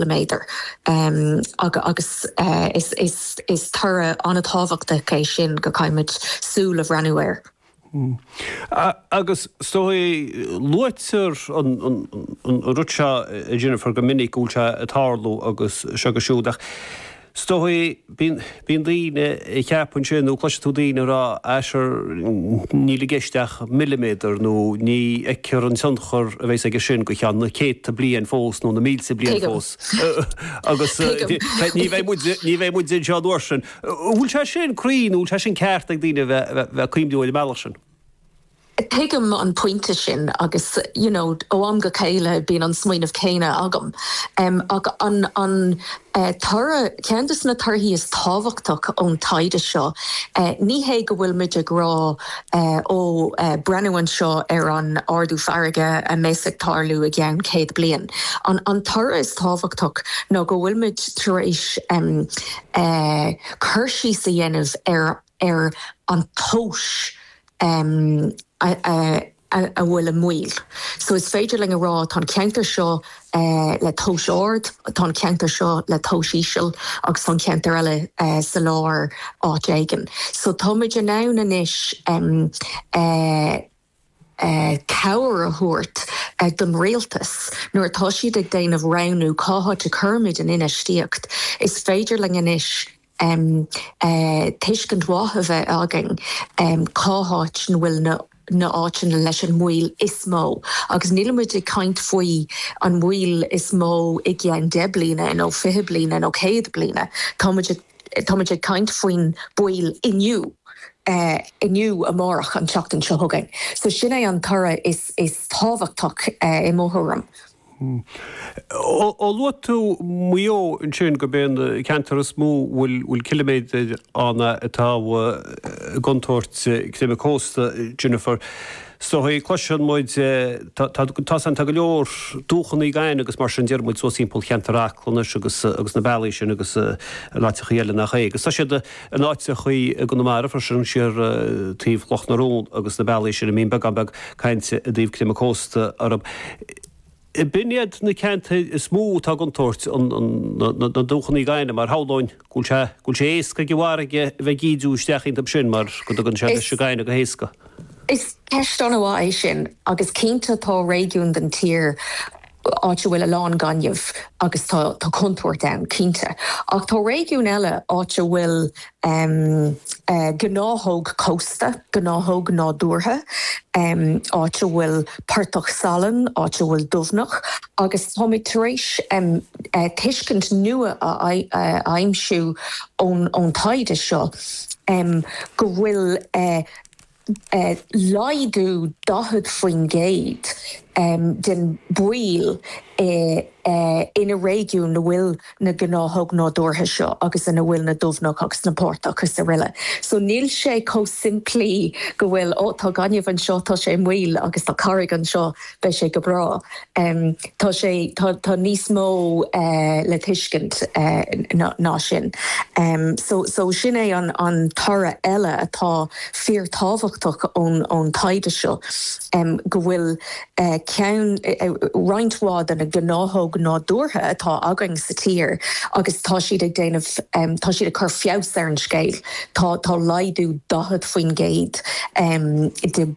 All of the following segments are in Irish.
le méadar agus is toradh an-tábhachtach é sin go gcaithfimid súil a bhreathnú air. Agus is dóigh, luaitear an rud seo, a Jennifer, go minic go bhfuil sé ag tarlú agus seo agus siúd ach, 'S dóigh, bíonn daoine ag ceapadh sin nó cloiseann tú daoine ag rá Ah sure níl i gceist ach milliméadar nó ní fheicthear an tionchar a bhéas aige sin go ceann na céadta bliain fós nó na mílte bliain fós agus ní bheidh muid ní bheidh muid anseo an uair sin. An bhfuil sé sin cruinn, an bhfuil sé sin ceart ag daoine a bheith a bheith a bheith ag cuimhniú ar an mbealach sin? Tuigim an pointe sin agus you know ó am go chéile bíonn an smaoineamh céanna agam. Ach an an toradh, ceann de na torthaí is tábhachtach ón taighde seo, ní hé go bhfuilimid ag rá ó breathnú anseo ar an ardú farraige a bheas ag tarlú i gceann céad bliain. An an toradh is tábhachtach ná go bhfuilimid tar éis cur síos a dhéanamh ar ar an tomhas ehm a bhfuil i mbaol. So is féidir linn a rá tá an ceantar seo le tomhas ard, tá an ceantar seo le tomhas íseal agus tá an ceantar eile sa lár áit éigin. So táimid in ann anois ehm cabhair a thabhairt don Rialtas nuair atá siad ag déanamh roghnú cá háit a cuirimid an infheistíocht. Is féidir linn anois em. tuiscint mhaith a bheith againn em. cá háit a bhfuil na na áiteanna leis an mbaol is mó agus nílimid ag caint faoi an mbaol is mó i gceann deich bliana nó fiche bliana nó céad bliana. Táimid ag táimid ag caint faoin baol inniu eh. inniu, amárach, an tseachtain seo chugainn. So sin é an toradh is is tábhachtach eh i mo thuairim. Hm. Ó luaigh tú Maigh Eo ansin, gurb é an ceantar is mó a bhfuil ciliméadair ann atá i gcontúirt creimeadh cósta, Jennifer, is dóigh, cloiseann muid, tá san, tá go leor dumhchannaí againn agus mar sin deireann muid suas thimpeall cheantar Acla anois agus na bealaí sin agus in áiteachaí eile nach é agus tá siad, In áiteachaí i gConamara, freisin, siar taobh Chloch na Rón agus na bealaí sin, a mbíonn beagán beag cainte i dtaobh creimeadh cósta orthu. B'in iad na ceantair is mó atá i gcontúirt, na dumhchannaí gainimh, mar shamhlóinn go bhfuil sé, go bhfuil sé éasca ag an bhfarraige a bheith ag ídiú isteach iontub sin mar go dtugann sé leis an gaineamh go héasca. Is ceist an-mhaith é sin agus cinnte tá réigiúin den tír, áit a bhfuil a lán gainimh agus tá contúirt ann, cinnte, ach tá réigiún eile, áit a bhfuil gnáthóg cósta, gnáthóg nádúrtha, áit a bhfuil portach salainn, áit a bhfuil dumhcha agus táimid tar éis tuiscint nua a aimsiú ón taighde seo go bhfuil laghdú 40% den baol i na réigiúin ina bhfuil na gnáthóg nádúrtha seo agus ina bhfuil na dumhcha agus na portach is aroile. So níl sé chomh simplí go bhfuil oh tá gaineamh anseo tá sé i mbaol agus tá carraig anseo. Beidh sé go breá. Tá sé, tá níos mó le tuiscint ná sin. So sin é an toradh eile atá fíorthábhachtach ón taighde seo, go bhfuil ceann, roinnt mhaith de na gnáthóg nádúrtha atá againn sa tír agus tá siad ag déanamh, tá siad ag cur feabhas ar an scéal. Tá laghdú 40% de.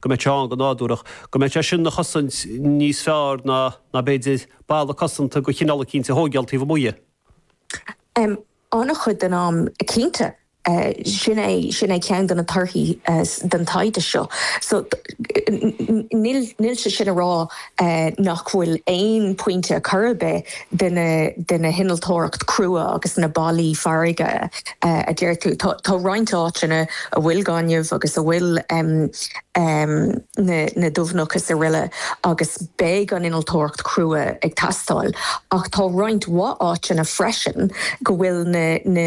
go mbeadh sé ann go nádúrach, go mbeadh sé sin ina chosaint níos fearr ná, ná b'fhéidir, balla cosanta de chineál eicínt a thóigheáil taobh amuigh dhe. M. An-chuid den am, cinnte. Sin é, sin é ceann de na torthaí den taighde seo. So, níl, níl sé sin a rá. nach bhfuil aon pointe ar chor ar bith de na, de na hinnealtóireacht crua agus na ballaí farraige a deir tú. Tá roinnt áiteanna a bhfuil gaineamh agus a bhfuil na dumhcha is aroile agus beidh an innealtóireacht chrua ag teastáil ach tá roinnt mhaith áiteanna freisin go bhfuil na